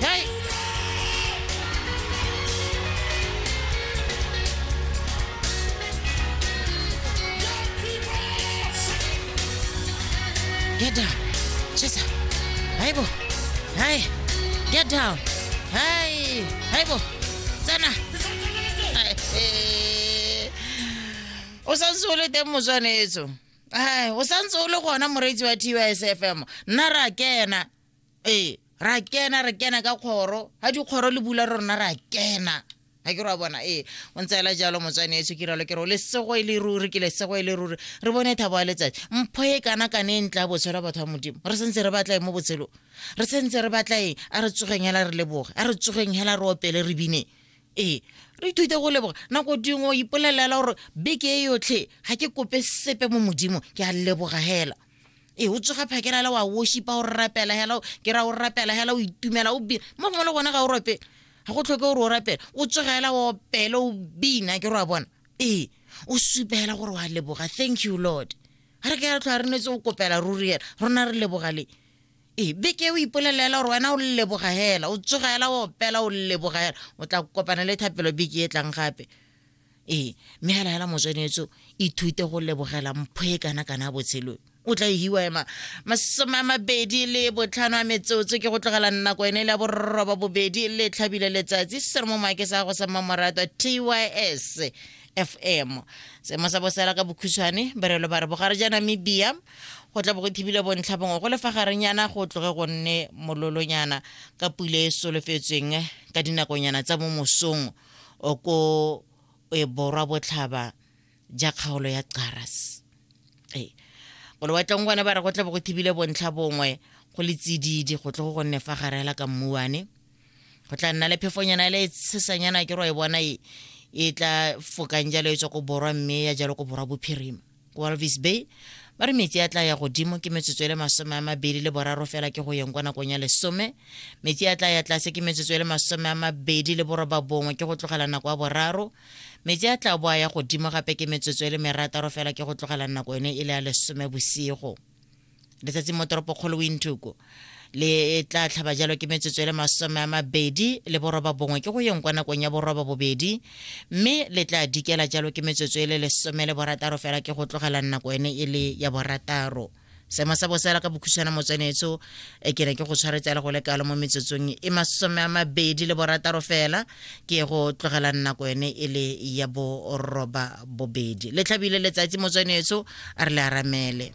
Hey! Get down. Cheza. Aibu. Hai. Get down. Hai. Aibu. Sana. Hai. Eh. O sa ntse o le teng moswanetso. Hai, o sa ntse o le gona moreetsi wa TUSFM. Nna ra kena. ee ra kena re kena ka kgoro ga dikgoro le bula rona ra kena ga ke re wa bona ee o ntse ela jalo motswane etso ke ralo ke re o lesego e le ruri ke lesego e le ruri re bone thabo ya letsatsi mpho e kana kana e ntla botshelo batho ba modimo re sentse re batlae mo botshelong re sentse re batlaeng a re tsogeng hela re leboge a re tsogeng hela re opele re bineng ee re ithute go leboga nako dingwe o ipolelela gore beke e yotlhe ga ke kope sepe mo modimo ke a leboga hela e o tsoga phakela le wa worshipa o rapela hela ke ra o rapela hela o itumela o bina mo gongwe le gone ga o rapele ga go tlhoke gore o rapele o tsoga hela o opele o bina ke re wa bona ee o supa hela gore wa leboga thank you lord ga re ke ya tlhoa re netse o kopela ruri hela rona re leboga le ee beke o ipolelela hela gore wena o leboga hela o tsoga hela o opela o leboga hela o tla kopana le thapelo beke e tlang gape ee mme hela hela motswenetso ithute go lebogela mpho e kana kana botshelong o tla hiwa ema masome a mabedi le botlhano a metsotso ke go tlogela nako ene le ya borroba bobedi le tlhabile letsatsi se re mo maake sa gago sa mmamoratwa tys fm seemo sa bosela ka bokhutshwane berelo ba re bogare ja namibia go tla bo go thibile bontlha bongwe go lefa garenyana go tloge go nne mololonyana ka pule e solofetsweng ka dinakonyana tsa mo mosong o ko e borwa botlhaba ja kgaolo ya Caras ee go lewatleng gone ba re go tla bo go thibile bontlha bongwe go le tsididi go tle go gonne fa gare hela ka mmuane go tla nna le phefonyana le tshesanyana ke ro e bona e e tla fokang jalo e tswa ko borwa mme ya jalo ko borwa bophirima walvis bay ba re metsi a tla ya godimo ke metsotso e le masome a mabedi le boraro fela ke go yeng kwa nakong ya lesome metsi a tla ya tlase ke metsotso e le masome a mabedi le boroba bongwe ke go tlogela nako ya boraro metsi a tla bo a ya godimo gape ke metsotso e le merataro fela ke go tlogela nako ene e le ya lesome bosigo letsatsi mo toropokgolo wintuku le e tla tlhaba jalo ke metsotso e le masome a mabedi le boroba bongwe ke go yeng kwa nakong ya boroba bobedi mme le tla dikela jalo ke metsotso e le lesome le borataro fela ke go tlogela nako ene e le ya borataro seemo sa bosela ka bokhutshwana motswanetso e ke ne ke go tshwaretsela go le kalo mo metsotsong e masome a mabedi le borataro fela ke go tlogela nako ene e le ya boroba bobedi le tlhabile letsatsi motswanetso a re le aramele